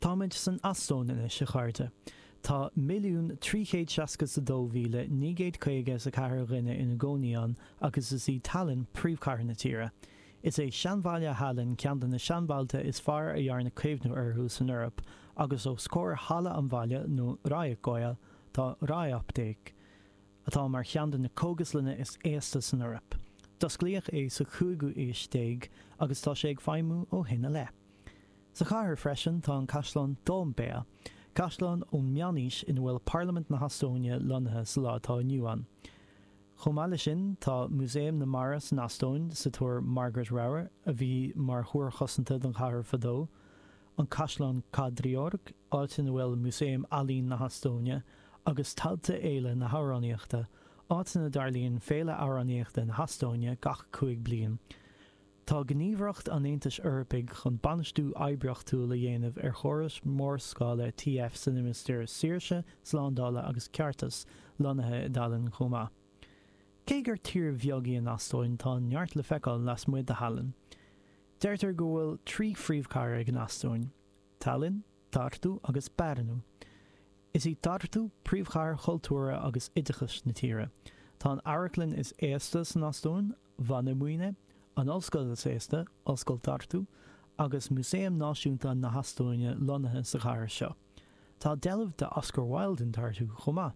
Táimid san Eastóin anois, a chairde. Tá 1,362,954 dhuine ina gcónaí ann agus is í Tallinn príomhchathair na tíre. Is é seanbhaile Thallinn ceann de na seanbhailte is fearr a dhearnadh caomhnú orthu san Eoraip agus os comhair Halla an Bhaile nó Raekoja tá Raeapteek, atá mar cheann de na cógaslanna is aosta san Eoraip. D'osclaíodh é sa chúigiú haois déag agus tá sé ag feidhmiú ó shin i leith. Sa chathair freisin tá an caisleán Toompea, caisleán ón meánaois ina bhfuil Parlaimint na hEastóine lonnaithe sa lá atá inniu ann. Chomh maith leis sin tá Músaem na Mara san Eastóin sa túr Margaret Ramhar, a bhí mar thúr chosanta don chathair fadó, an caisleán Kadriorg, áit ina bhfuil Músaem Ealaín na hEastóine, agus tailte Fhéile na hAmhránaíochta, áit ina dtarlaíonn Féile Amhránaíochta na hEastóine gach cúig bliain. Tá Gníomhaireacht an Aontais Eorpaigh chun bainistiú oibríochtúil a dhéanamh ar chórais mhórscála TF sa limistéar saoirse, slándála agus ceartais, lonnaithe i dTallinn chomh maith. Cé gur tír bheag í an Eastóin, tá neart le feiceáil lasmuigh de Thallinn. Deirtear go bhfuil trí phríomhchathair ag an Eastóin, Tallinn, Tartu agus Pärnu. Is í Tartu príomhchathair chultúrtha agus oideachais na tíre. Tá an amharclann is aosta san Eastóin, Vanemuine, an Ollscoil is aosta, Ollscoil Tartu, agus Músaem Náisiúnta na hEastóine lonnaithe sa chathair seo. Tá deilbh d'Oscar Wilde in Tartu chomh maith.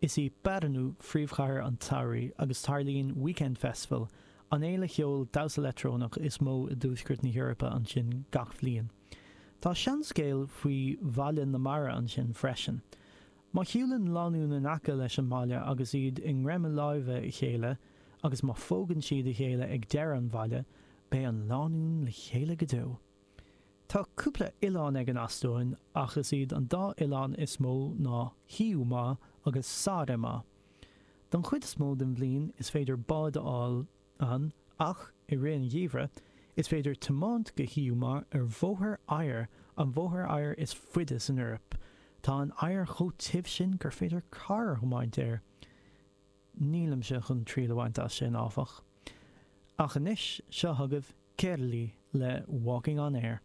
Is í Pärnu phríomhchathair an tsamhraidh agus tarlaíonn Weekend Festival, an fhéile cheoil damhsa leictreonach is mó i dtuaisceart na hEorpa ansin gach bhliain. Tá seanscéal faoi bhalla na mara ansin freisin. Má shiúlann lánúin in aice leis an mballa agus iad i ngreim láimhe a chéile agus má phógann siad a chéile ag deireadh an bhalla, beidh an lánúin le chéile go deo. Tá cúpla oileán ag an Eastóin ach is iad an dá oileán is mó ná Hiiumaa agus Saaremaa. Don chuid is mó den bhliain is féidir bád a fháil ann, ach i rith an gheimhridh, is féidir tiomáint go Hiiumaa ar bhóthar oighir, an bhóthar oighir is faide san Eoraip. Tá an oighear chomh tiubh sin gur féidir carr a thiomáint air. Nílimse chun triail a bhaint as sin, áfach. Ach anois, seo chugaibh Kerli le Walking on Air.